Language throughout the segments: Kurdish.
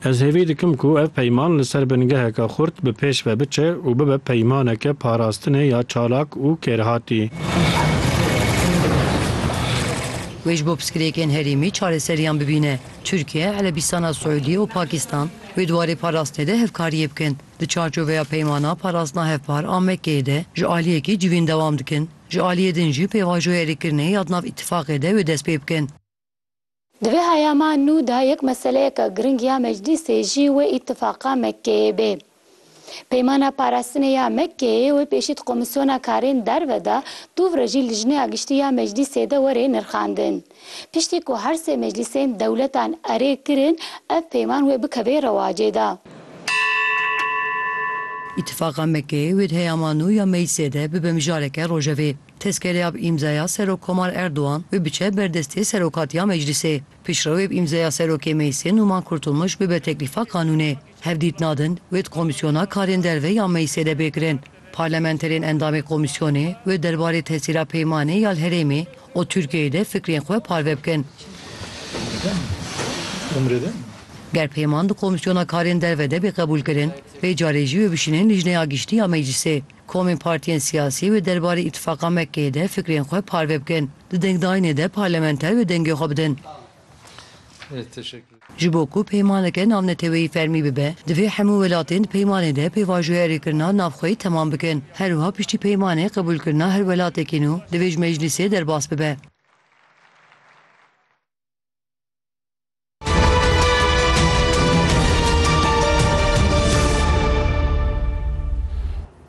Ez hêvî dikim ku ev peyman li ser bingeheke xurt bi pêş ve biçe û bibe peymaneke parastinê ya çalak û kêrhatî. Wê ji bo pirsgirêkên herêmî çareseriyan bibîne. Tirkiye, Erebîstana Siûdî û Pakîstan wê di warê parastinê de hevkariyê bikin. Di çarçoveya peymana parastina hevpar a Mekkeyê de ji aliyekî civîn dewam dikin. Ji aliyê din jî pêvajoya rêkirinê ya di nav îtîfaqê de wê dest pê bikin. Di vê heyama nû de yek meseleyeke giring ya Meclîsê jî wê Îtîfaqa Mekkeyê bê. Peymana Parastinê ya Mekkeyê wê pêşî di Komîsyona Karên Derve de, dûvre jî Lijneya Giştî ya Meclîsê de were nirxandin. Piştî ku her sê meclîsên dewletan erê kirin, ev peyman wê bikeve rewacê de. Îtîfaqa Mekkeyê wê di heyama nû ya Meclîsê de bibe mijareke rojevê. Tezkereya bi îmzaya Serokkomar Erdogan bibiçe ber destê Serokatiya Meclîsê. Piştrawê bi îmzaya Serokê Meclîsê Nûman Kurtulmuş bibe teklîfa qanûnê. Hevdîtina din wê di komîsyona karên derve ya Meclîsê de bê kirin. Parlamenterên endamê komîsyonê wê derbarê tesîra peymanê ya li herêmê û Tirkiyeyê de fikrên xwe parve bikin. Ger peyman di komîsyona karên derve de bê qebûlkirin, vê carê jî wê bişînin Lijneya Giştî ya Meclîsê. Komên partiyên siyasî wê derbarê îtifaqa Mekkeyê de fikrên xwe parve bikin. Di dengdayînê de parlamenter wê dengê xwe bidin. Ji bo ku peymaneke navneteweyî fermî bibe, divê hemû welatên di peymanê de pêvajoya rêkirina navxweyî temam bikin. Her wiha piştî peymanê qebûlkirina her welatekî nû divê ji meclîsê derbas bibe.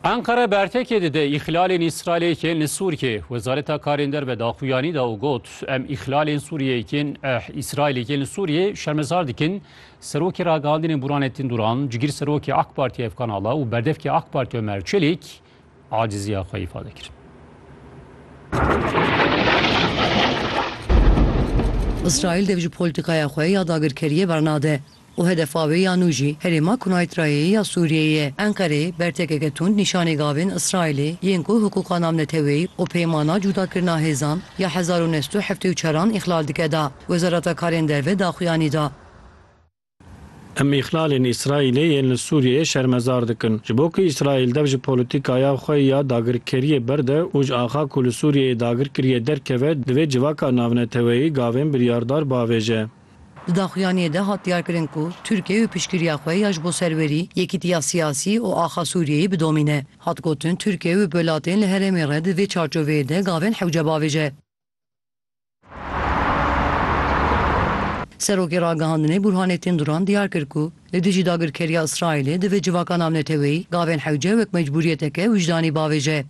Enqere bertekê dide îxlalên Îsraîlê yên li Sûriyê. Wezareta Karên Derve daxuyanî da û got, Em îxlalên Sûriyê yên eh, Îsraîlê yên li Sûriyê şermezar dikin. Serokê ragihandinên Buranettin Duran, cigîr serokê AK Partî Efkan Ala û berdevkê AK Partî Ömer Çelik aciziya xwe îfade kir. Îsraîl dev ji polîtîkaya xwe ya dagirkeriyê bernade û hedefa wê ya nû jî herêma Kunayitrayeyê ya Sûriyeyê ye. Enqere bertekeke tund nîşanî gavên Îsraîlê yên ku hiqûqa navneteweyî û peymana cûdakirina hêzan ya hezar û neh sed û heftê û çar an îxlal dike da. Wezareta Karên Derve daxuyanî da. Em îhlalên Îsraîlê yên li Sûriyeyê şermezar dikin. Ji bo ku Îsraîl dev ji polîtîkaya xwe ya dagirkeriyê berde û ji axa ku li Sûriyeyê dagir kiriye derkeve, divê civaka navneteweyî gavên biryardar biavêje. Di daxuyaniyê de hat diyarkirin ku Tirkiye û piştgiriya xwe ya ji bo serwerî, yekîtiya siyasî û axa Sûriyeyê bidomîne. Hat gotin Tirkiye û welatên li herêmê re di vê çarçoveyê de gavên hewce biavêje. Serokê Ragihandinê Bûrhanettin Duran diyar kir ku li dijî dagirkeriya Îsraîlê divê civaka navneteweyî gavên hewce wek mecbûriyeteke wijdanî bavêje.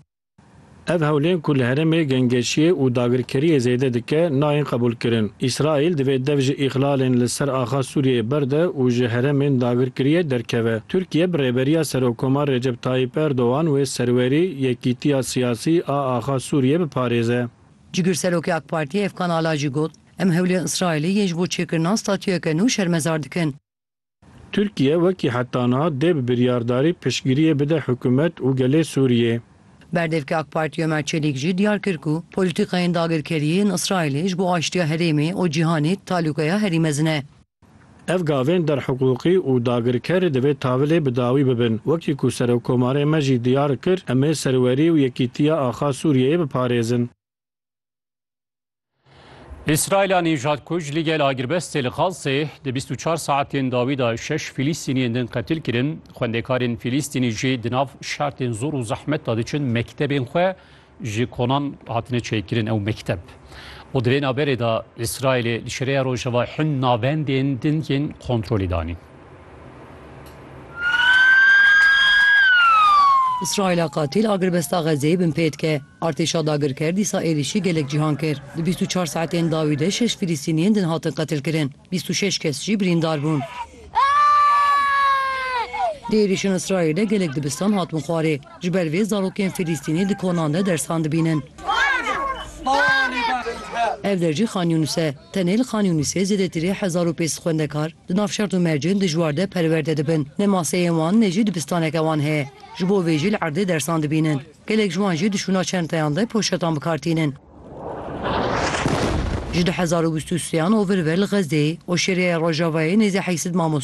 Ev hewlên ku li herêmê gengeşiyê û dagirkeriyê zêde dike nayên qebûlkirin. Îsraîl divê dev ji îxlalên li ser axa Sûriyeyê berde û ji herêmên dagirkiriyê derkeve. Tirkiye bi rêberiya Serokkomar Recep Tayyîp Erdogan wê serwerî Yekîtiya Siyasî, Sî a axa Sûriyê biparêze. Cigirserokê AK Partiyê Efkan Ala jî got, Em hewlên Îsraîlê yên ji bo çêkirina statûyeke nû şermezar dikin. Tirkiye wekî heta niha dê bi biryardarî piştgiriyê bide hikûmet û gelê Sûriyê. Berdevkê AK Partiyê Ömer Çelîk jî diyar kir ku polîtîkayên dagirkeriyê yên Îsraîlê ji bo aştiya herêmê û cîhanê talûkeya herî mezin e. Ev gavên derhiqûqî û dagirker divê tavilê bi dawî bibin. Wekî ku Serokkomarê me jî diyar kir, em ê serwerî û yekîtiya axa Sûriyeyê biparêzin. Îsraîla nîjadkuj li gel agirbestê li Xazzê di bîst û çar saetên dawî de şeş Fîlîstîniyên din qetil kirin. Xwendekarên Fîlîstînî jî di nav şertên zor û zehmet de diçin mektebên xwe ji konan hatine çêkirin ew mekteb û di vê naberê de Îsraîlê li Şêreya Rojava hin navendên din yên kontrolê danîn. Îsraîla qatîl agirbesta Xezeyê binpê dike. Artêşa dagirker dîsa êrîşî gelek cîhan kir. Di bîst û çar saetên dawî de şeş Filîstîniyên din hatin qetilkirin, bîst û şeş kes jî birîndar bûn. Di êrîşên Îsraîlê de gelek dibistan hatibûn xwarê. Ji ber vê zarokên Filîstînî di konan de dersan dibînin. Ev der jî Xan Yûnus e. Tenê li Xan Yûnisê zêdetirî hezar û pênc sed xwendekar di nav şert û mercên dijwar de perwerde dibin. Ne maseyên wan ne jî dibistaneke wan heye. Ji bo vê jî li erdê dersan dibînin. Gelek ji wan jî di şûna çenteyan de poşetan bi kar tînin. Ji du hezar û bîst û sê an ovir ve li Xezdeyê, Oşêriyaya Rojavayê nêzî heşt sed mamoste,